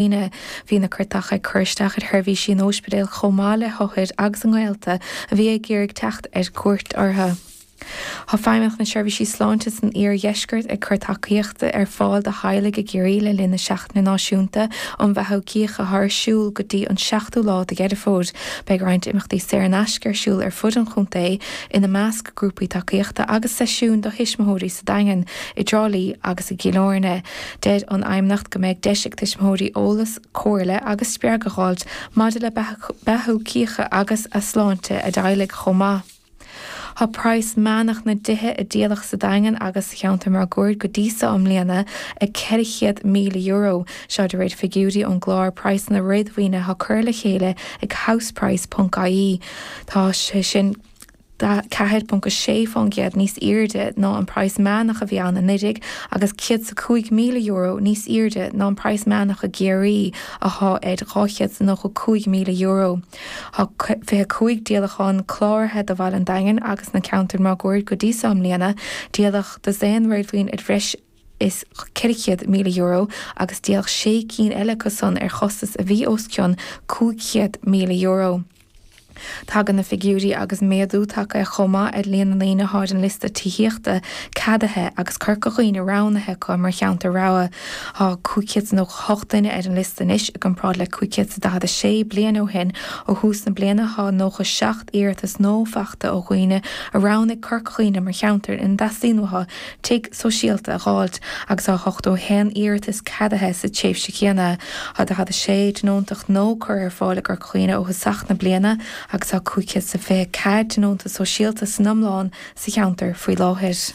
Aoine. Bhí na cairteacha ag cur isteach ar sheirbhísí an óispidéil chomh maith le hothair agus a ngaolta a bhí ag iarraidh teacht ar cuairt orthu. Tá Feidhmeannacht na Seirbhísí Sláinte san Iar-Dheisceart ag cur tacaíochta ar fáil do theaghlaigh i gCiarraí le linn na Seachtaine Náisiúnta um Bheathú Cíche atá ar siúl go dtí an 7ú lá de Dheireadh Fómhair. Beidh roinnt imeachtaí saor in aisce ar siúl ar fud an chontae, ina measc grúpaí tacaíochta agus seisiúin do thuismitheoirí sa Daingean, i dTrá Lí agus i gCill Áirne. Deir an Fheidhmeannacht go mbeidh deis ag tuismitheoirí eolas, comhairle agus spreagadh a dh'fháilt maidir le beathú cíche agus a sláinte a dteaghlaigh chomh maith. Tá praghas meánach na dtithe a díoladh sa Daingean agus sa cheantar máguaird go dtí seo i mbliana ag €400,000, seo de réir figiúirí ón gClár Praghsanna Réadmhaoine atá curtha le chéile ag Houseprice.ie. Tá sé sin. 4.6% níos airde ná an praghas meánach a bhí ann anuiridh agus €105,000 níos airde ná an praghas meánach i gCiarraí athá ar €295,000. Thá 25 díolachán cláraithe do Bhaile an Daingin agus na ceantair máguaird go dtí so i mbliana, díoladh dosaen réadmhaoin ar bhreis is €400,000 agus díoladh sé cinn eile acusan ar chostas a bhí os cionn €500,000. Tagann na figiúirí agus méadú tagtha chomh maith ar líon na ndaoine athá ar an liosta tithíochta ceadaithe agus Corca Dhuibhne roghnaithe acu mar cheantar rogha. Tá 598 duine ar an liosta anois i gcomparáid le 546 bliain ó shin. Ó thús na bliana tá 97 iarratas nua fachta ó dhaoine a roghnaigh Corca Dhuibhne mar cheantar ina dteastaíonn uathu tigh sóisialta a dh'fháilt agus thá ochtó a haon iarratas ceadaithe sa tréimhse chéanna, tá daichead a sé tionóntacht nua curtha ar fáil i gCorca Dhuibhne ó thosach na bliana agus tá cúig chéad is a fiche ceathair tionónta sóisialta san iomlán sa cheantar faoi láthair.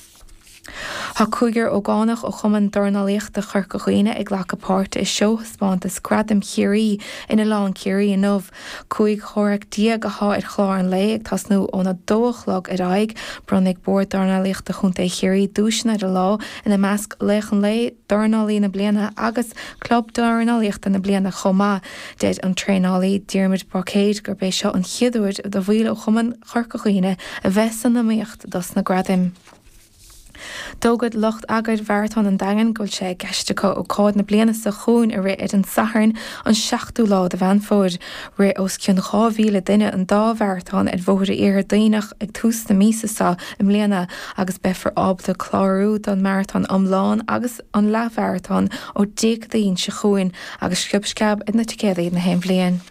Tá cúigear ógánach ó Chumann Dornálaíochta Chorca Dhuibhne ag glacadh páirte i seóthaispeántas Gradaim Chiarraí in Oileán Ciarraí inniu, Cúig chomhrac déag athá ar chlár an lae, ag tosnú ón a dó a chlog ar aghaidh. Bronnfaidh Bord Dornálaíochta Chontae Chiarraí duaiseanna ar an lá, ina measc Laoch an Lae, Dornálaí na Bliana agus Club Dornálaíochta na Bliana chomh maith. Deir an traenálaí Diarmuid Báicéir gurb é seo an chéad uair do bhaill ó chumann Chorca Dhuibhne a bheith san iomaíocht dos na gradaim. D'fhógair lucht eagair Mharatón an Daingin go bhfuil sé i gceist acu ócáid na bliana seo chugainn a rith ar an Satharn an 7ú lá de Mheán Fómhair. Rith os cionn 2,000 duine an dá mharatón ar bhóithre Iarthar Duibhneach ag tús na míosa seo i mbliana agus beifear ábalta clárú don maratón iomlán agus an leathmharatón ó Déardaoin seo chugainn agus sciob sceab ar na ticéadaí nach aon bhliain.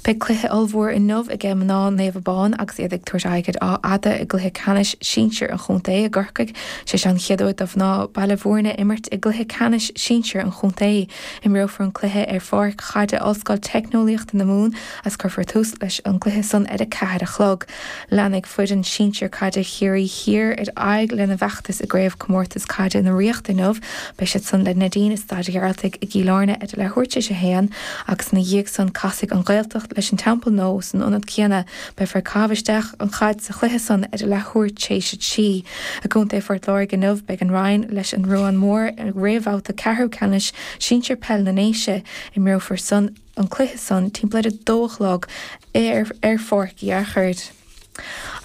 Beidh cluiche ollmhór inniu aige mná Naomh Abán agus iad ag tabhairt aghaidh ar Áth Fhada i gcluiche ceannais sinsir an chontae i gCorcaigh. Sé seo an chéad uair do mhná Baile Mhúirne imirt i gcluiche ceannais sinsir an chontae. Imreofar an cluiche ar pháirc chaide Ollscoil Teicneolaíochta na Mumhan agus cuirfear tús leis an gcluiche san ar a ceathair a chlog. Leanfaidh foireann sinsir caide Chiarraí Thiar ar aghaidh lena bhfeachtas i gCraobhchomórtas Caide na Ríochta inniu. Beidh siad san le Neidín i Staid Ghearaltaigh i gCill Airne ar a leathuair tréis a haon agus ina dhiaidh san casfaidh An Ghaeltacht leis An Teampall Nua san ionad céanna beifear ag caitheamh isteach an chaid sa chluiche san ar a leathuair tréis a trí. I gContae Phort Láirge inniu beidh An Rinn leis An Ruán Mór i réamhbhabhta ceathrú ceannais sinsir peil na nDéise. Imreofar san. an cluiche san timpeall ar a dó a chlog ar pháirc Uí Fhearchair.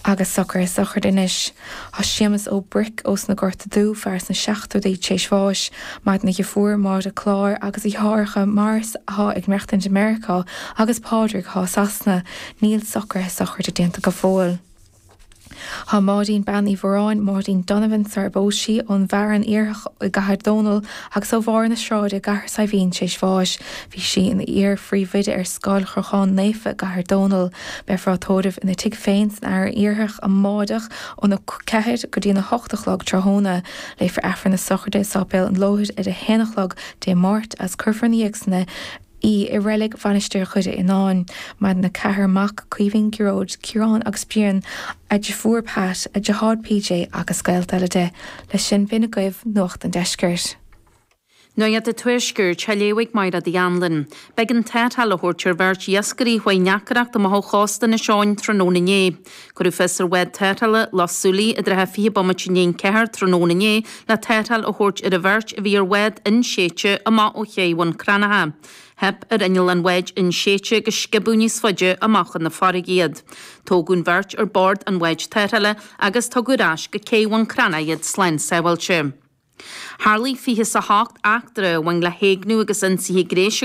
Agus socruithe sochraide anois. Tá Séamus Ó Bric ós na Gorta Dubha, fear sna seachtóidí tréis bháis, maireann a dheirfiúr, Máire Clár agus a dheartháireacha Maurice athá ag maireachtaint i Meiriceá agus Pádraig athá i Sasana, níl socruithe sochraide déanta go fóill. Tá Máirín Bean Uí Mhoráin, Máirín Donovan, sarar phós sí, ón bhFearann Iarthach i gCathair Dónall agus ó Bharr na Sráide i gCathair Saidhbhín tréis bháis. Bhí sí ina hiar-phríomhoide ar Scoil Chrócháin Naofa i gCathair Dónall. Beifear á tórramh ina tigh féin san Fhearann Iarthach amáireach óna 4 go dtína 8 a chlog tráthnóna. Léifear Aifreann na Sochraide i Sáipéal an Lóthair ar a 1 a chlog Dé Máirt agus cuirfear ina dhiaidh san í i reilig Mhainistir Dhoire Fhionáin. Maireann a ceathrar mac, Caoimhín, Gearóid, Ciarán agus Brian, a deirfiúr Pat, a deartháir PJ agus gaolta eile di leis. Sin é agaibh Nuacht an Deiscirt. Nuacht an Tuaiscirt á léamh ag Máire The Anlann. B'éigean tarrtháil a thabhairt ar bheirt iascairí a bhí i ndeacracht amach ó chósta Inis Eoghain tráthnóna inné. Cuireadh fios ar bhád tarrthála Loch Súilí i dtrátha fiche bomaite i ndiaidh an ceathair tráthnóna inné le tarrtháil a thabhairt ar an bheirt a bhí ar bhád inséidte amach ó chéidh Bhun Cranncha. Theip ar inneall an bháid inséidte agus sciobadh níos faide amach chun na farraige iad. Tógadh an bheirt ar bord an bháid tarrthála agus tugadh ar ais go céidh Bhun Cranncha iad slán sábháilte. Tharlaigh fiche is a hocht eachtra a bhain le héigniú agus ionsaithe gnéis i